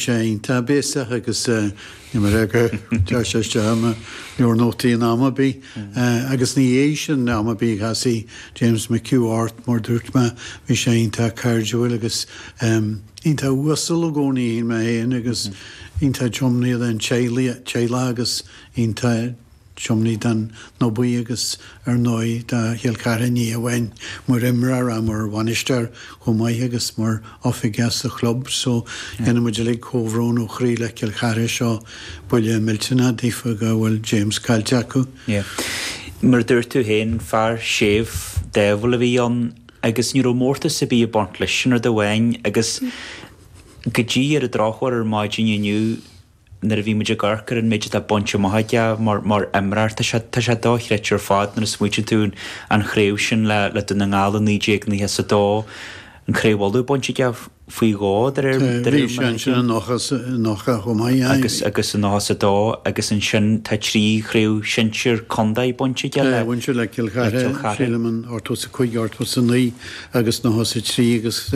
sé iontach béasach agus ní mar fheag ar tá sé isteach ar mo leabhar nótaí in am ar bith. Agus ina dhiaidh sin, am ar bith, casadh James McHugh ort, mar dúirt mé, bhí sé iontach cairdiúil agus iontach uasal i gcónaí, shíl mé féin, agus iontach tiomnaithe don teaghlach agus iontach. tiomnaithe don no baoi agus ar ndóigh do Chill Chartha ní amháin mar imreoir ach mar bhainisteoir chomh maith agus mar oifigeach sa chlub so déanann muid uilig comhbhrón ó chroí le Cill Chartha seo buille millteanach daofa go bhfuil James caillte acu. Yeah. Mar a dúirt tú féin, fear séimh, dáimhiúil a bhí ann agus ní raibh mórtas ar bith ag baint leis sin rud amháin agus go dtí ar an drochuair ar maidin inniu, nuair a bhí muid ag amharc ar an méid atá bainte amach aige mar imreoir, tá sé dochreidte ar fad nuair a smaoitíonn tú an chraobh sin le Dún na nGall i 1992, an Craobh Uladh bainte aige faoi dhó de réir Tá a fhios ansin i nócha, i nócha chomh maith, aye. agus i nócha is a dó agus ansin tá trí chraobh shinsir contae bainte aige le Aye, bhain sé le Cill Chartha, sílim in ochtó is a 5 ochtó is a 9 agus nócha is a trí agus.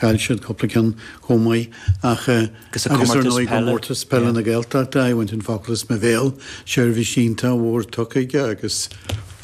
Chaill siad cúpla ceann chomh maith ach, agus ar ndóigh Comórtas Peile na Gaeltachta, aye bhain tú an focal as mo bhéal, seirbhís iontach mhór tugtha aige agus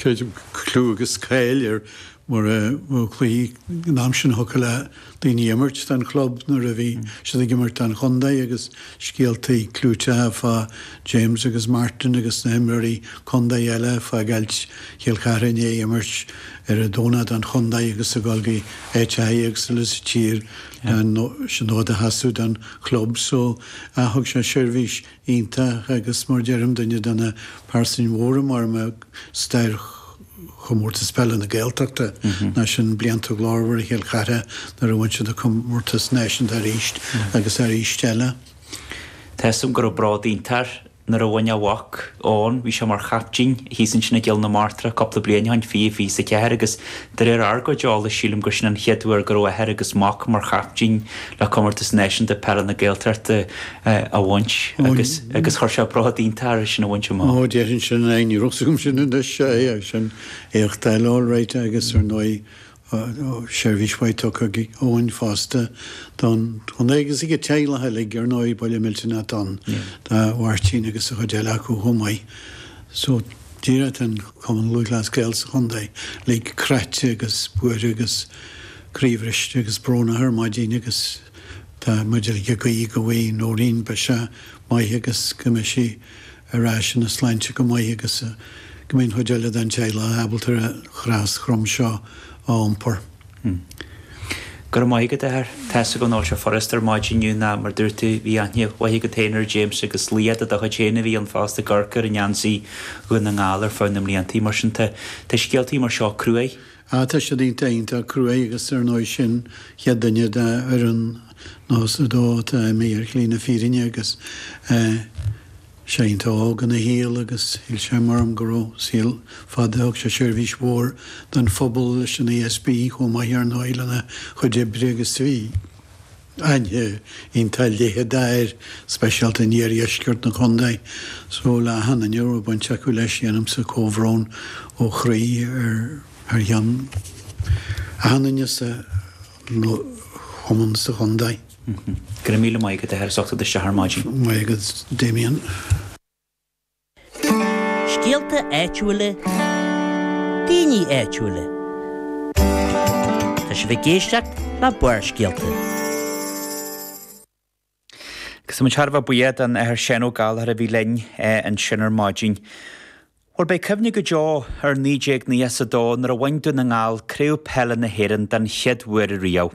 creidim go clú agus cáil air mar a bhfuil cloí an t-am sin thiocfadh le daoine imirt don chlub nuair a bhí siad ag imirt don chontae agus scéaltaí clúiteacha fá James agus Martin agus na himreoirí contae eile ag fágáilt Chill Chartha i ndiaidh imirt ar an Domhnach don chontae agus a dhul go háiteachaí éagsúla sa tír leis an fhód a sheasamh don chlub so thug sé seirbhís iontach agus mar deirim duine de na pearsain mhóra mhóra i stair Chomórtas Peile na Gaeltachta, nó sin blianta glórmhara Chill Chartha nuair a bhain siad an comórtas náisiúnta arís agus arís eile. Measaim go raibh bród iontach air nuair a bhain a mhac, Eoin, bhí sé mar chaiptín, thíos ansin i gCill na Martra cúpla bliain ó shin, fiche fiche is a ceathair agus de réir ár gcuid eolais sílim gur sin an chéad uair go raibh athair agus mac mar chaiptín le comórtas náisiúnta peile na Gaeltachta. a bhaint agus agus chuir sé bród iontach air é sin a bhaint amach. Ó, déarfainn sin, aye, ní raibh a fhios agam sin anois, seo é agus sin, éacht eile alright agus ar ndóigh seirbhís mhaith tugtha ag Eoin fosta don chontae agus ag a teaghlach uilig ar ndóigh, buille millteanach do Mháirtín agus an chuid eile acu chomh maith so díreach tá an Cumann Lúthchleas Gael sa chontae uilig cráite agus buartha agus croíbhriste agus brónach ar maidin agus. Tá muid ag guí go bhfaighe Noreen biseach maith agus go mbeidh sí ar ais ina sláinte go maith agus go mbeidh an chuid eile den teaghlach ábalta an chros throm seo a iompar. Go raibh maith agat, a Athair. Tá's agam nach bhfuil seo furast ar maidin inniu nó mar a dúirt tú, bhí aithne mhaith agat féin ar James agus laoch de do chuid féin a bhí ann fosta ag amharc air i ngeansaí Dhún na nGall ar feadh na mblianta mar sin tá scéaltaí mar seo cruaidh. Ah, tá siad iontach, iontach cruaidh agus ar ndóigh sin an chéad duine de fhoireann 92 atá imithe ar shlí na fírinne agus eh sé iontach óg ina shaol agus shíl sé mar orm go raibh saol fada, thug sé seirbhís mhór don phobal leis an ESB chomh maith ar ndóigh lena chuid oibre agus bhí. aithne iontach leitheadach air, speisialta in iardheisceart na condae. So le achan duine a raibh baint acu leis, déanaimse comhbhrón ó chroí thar ceann achan duine sa chumann sa chondae. Go raibh míle maith agat a Sheán, as ucht a theacht ar maidin. Maith agat Damien. Scéalta áitiúla, daoine áitiúla. Tá sibh ag éisteacht le Barrscéalta. Agus muid thar a bheith buíoch den Athair Seán Ó Gallchóir a bhí linn ansin ar maidin. Bhuel, beidh cuimhne go deo ar 1992 nuair a bhain Dún na nGall Craobh Peile na hÉireann den chéad uair riamh.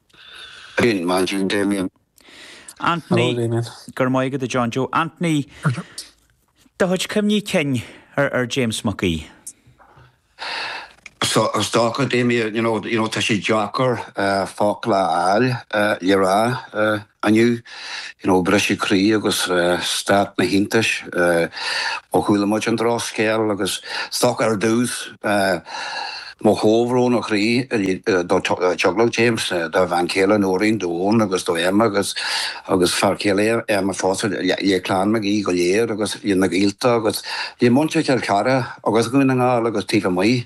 Bíonn Mandy and Damien. Anthony, Hello, Damien. Go raibh maith agat, a John Joe. Anthony, Do chuid cuimhní cinn ar James Mac Aoidh? So, is dócha, Damien, you know, tá sé deacair focla a fháil le rá. Inniu, you know, briseadh croí agus stát na hiontais ó chuala muid an drochscéal agus is dócha ar dtús mo chomhbhrón ó chroí do theaghlach James, dá bhean chéile Noreen, d'Eoin agus do Emma agus agus fear céile Emma fosta, le clann Mac Aoidh go léir agus le na gaolta agus le muintir Chill Chartha agus Dhún na nGall agus taobh amuigh.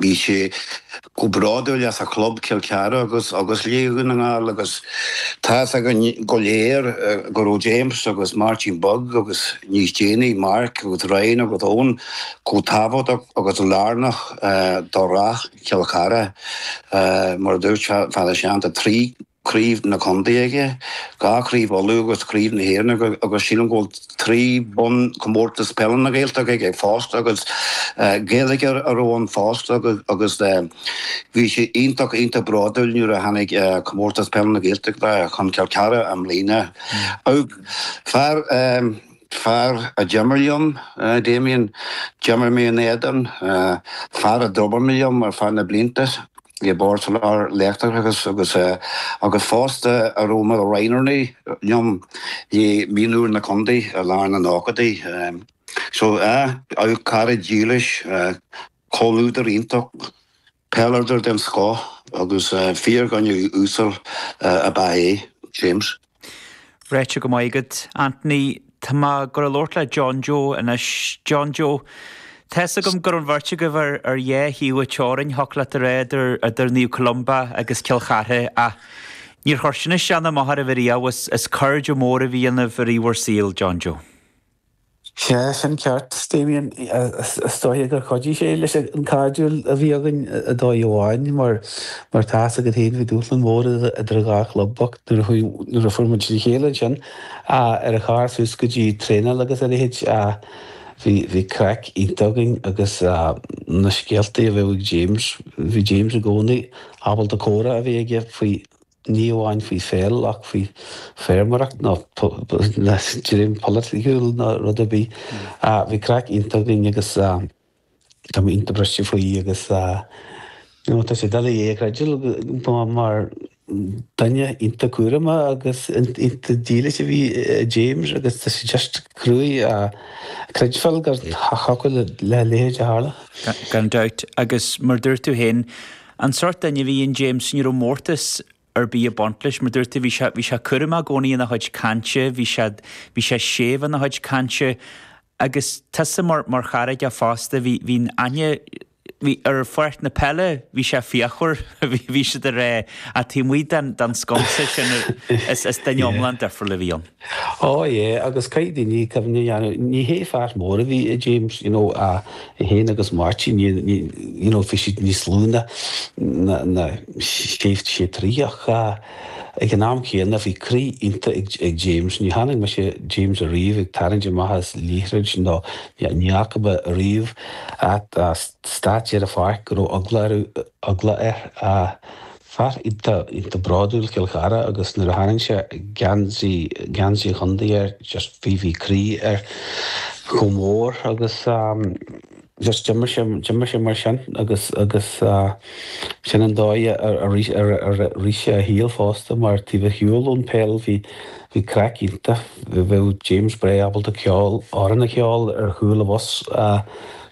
Bhí sé chomh bródúil as a chlub, Cill Chartha, agus as Dún na nGall agus tá fhios againn go léir go raibh James agus Máirtín Beag agus níos déanaí Mark agus Ryan agus Eoin chomh tábhachtach agus lárnach do rath Chill Chartha mar a dúirt an tAthair Seán, 3. craobh na condae aige, dhá chraobh Uladh agus craobh na hÉireann agus sílim go bhfuil trí bonn comórtas peile na Gaeltachta aige fosta agus Gaeilge a raibh ann fosta agus bhí sé iontach iontach bródúil nuair a tháinig comórtas peile na Gaeltachta chun Cill Cartha i mbliana. Fear. fear a d'imir liom, Damien, d'imir mé ina éadan, fear a d'obair liom ar feadh na blianta i mBord Soláthair Leictreachais agus agus fosta a raibh mar roghnóir liom le mionúir na Condae i lár na nóchaidí. So, ah, cara dílis, comhluadar iontach. Peileadóir den scoth agus fíordhuine uasal ab ea é, James. Ráite go maith agat, Anthony. Tá mé ag gabháil a labhairt le John Joe anois. John Joe, tá fhios agam go raibh an bheirt agaibh ar dhá thaobh an teorainn, thiocfadh leat a rá idir Naomh Columba agus Cill Chartha, ach níor chuir sin isteach ná amach oraibh ariamh. Is cairde móra a bhí ionaibh i rith bhur saoil, John Joe. Sea, sin ceart, Damien. Is dóiche gur chuidigh sé leis an cairdiúil a bhí againn ar dhóigh amháin, mar tá's agat féin, bhí dúshlán mór idir dhá chlub ach nuair a fuair muid le chéile ansin ar an charr suas go dtí traenáil agus a leithéid. Bhí craic iontach againn agus na scéaltaí a bheadh ag James, bhí James i gcónaí ábalta comhrá a bheith aige faoi. ní amháin faoi pheil ach faoi feirmeoireacht nó dream polaitiúil nó rud ar bith. Bhí craic iontach againn agus tá mé iontach briste faoi agus you know tá sé doiligh é a chreidbheáil mar duine iontach cúramach agus iontach dílis a bhí i James agus tá sé just cruaidh a chreidbheáil go dtiocfadh le a leithéid a tharlú. Gan dabht, agus mar dúirt tú féin, An sórt duine a bhí in James, ní raibh mórtas ar bith ag baint leis, mar dúirt tú, bhí sé, bhí sé cúramach i gcónaí ina chuid cainte, bhí sé, bhí sé séimh ina chuid cainte. Agus tusa mar, mar chara aige fosta, bhí, bhí aithne, bhí, ar pháirc na peile, bhí sé fíochmhar, bhí, bhí sé dáiríre, ach taobh amuigh den, den sconsa sin, is, is duine iomlán difriúil a bhí ann. Ó, yé, agus caithfidh daoine cuimhne a dhéanamh, ní hé fear mór a bhí i James, you know, a, é féin agus Máirtín, ní, ní, you know, bhí siad níos lú ná, ná, ná, sé, sé troigh ach eh ag an am céanna bhí croí iontach ag, ag James, ní chonaic mise James ariamh ag tarraingt amach as liathróid nó ní, ní fhaca mé ariamh ag taispeáint ar an pháirc go raibh eagla air eagla air, a fear iontach, iontach bródúil Cill Chartha agus nuair a tharraing sé geansaí, geansaí a chontae air just bhí, bhí croí air chomh mór agus just d'imir sé, d'imir sé mar sin agus, agus sin an dóigh a, a rith, a rith sé a shaol fosta mar taobh ar shiúl ón pheil bhí, bhí craic iontach, bheadh James breá ábalta ceol, amhrán a cheol ar chúl an bhus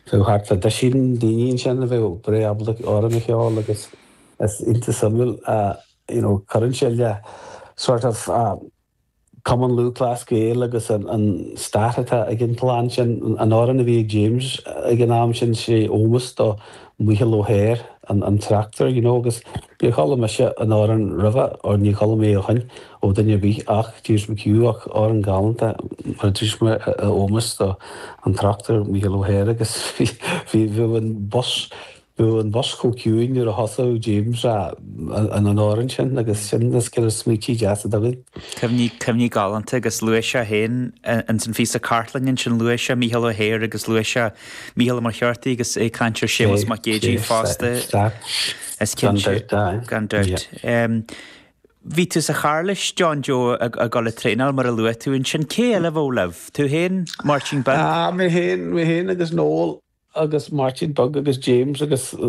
Tá thart fá duisín daoine ansin a bheadh breá ábalta amhrán a cheol agus is iontach suimiúil a, you know, cuireann sé le sort of Cumann Lúthchleas Gael agus an stat atá ag an gclann sin, an amhrán a bhí ag James ag an am sin sé ómós do Mhícheál Ó hEithir, an tráchtaire, you know, agus níor chuala mise an amhrán roimhe or ní chuala mé ó shin. ó duine ar bith ach James McHugh ach amhrán galánta mar a dúirt mé a ómós do an tráchtaire Mícheál Ó hEithir agus bhí bheadh an bus bheadh an bus chomh ciúin nuair a thosaigh James a an an amhrán sin agus sin is cinnte smaoití deasa atá againn. Cuimhní, cuimhní galánta agus luaigh sé féin ins an phíosa cartlainne ansin luaigh sé Mícheál Ó hEithir agus luaigh sé Mícheál Ó Muircheartaigh agus é ag caint ar Séamus Mac Géidigh fosta is cinnte gan dabht. Bhí tú sa charr leis, John Joe, ag dul ag traenáil, mar a luaigh tú ansin. Cé eile a bheadh libh? Tú féin, Máirtín Beag? Mé féin agus Noel agus Máirtín Beag agus James agus.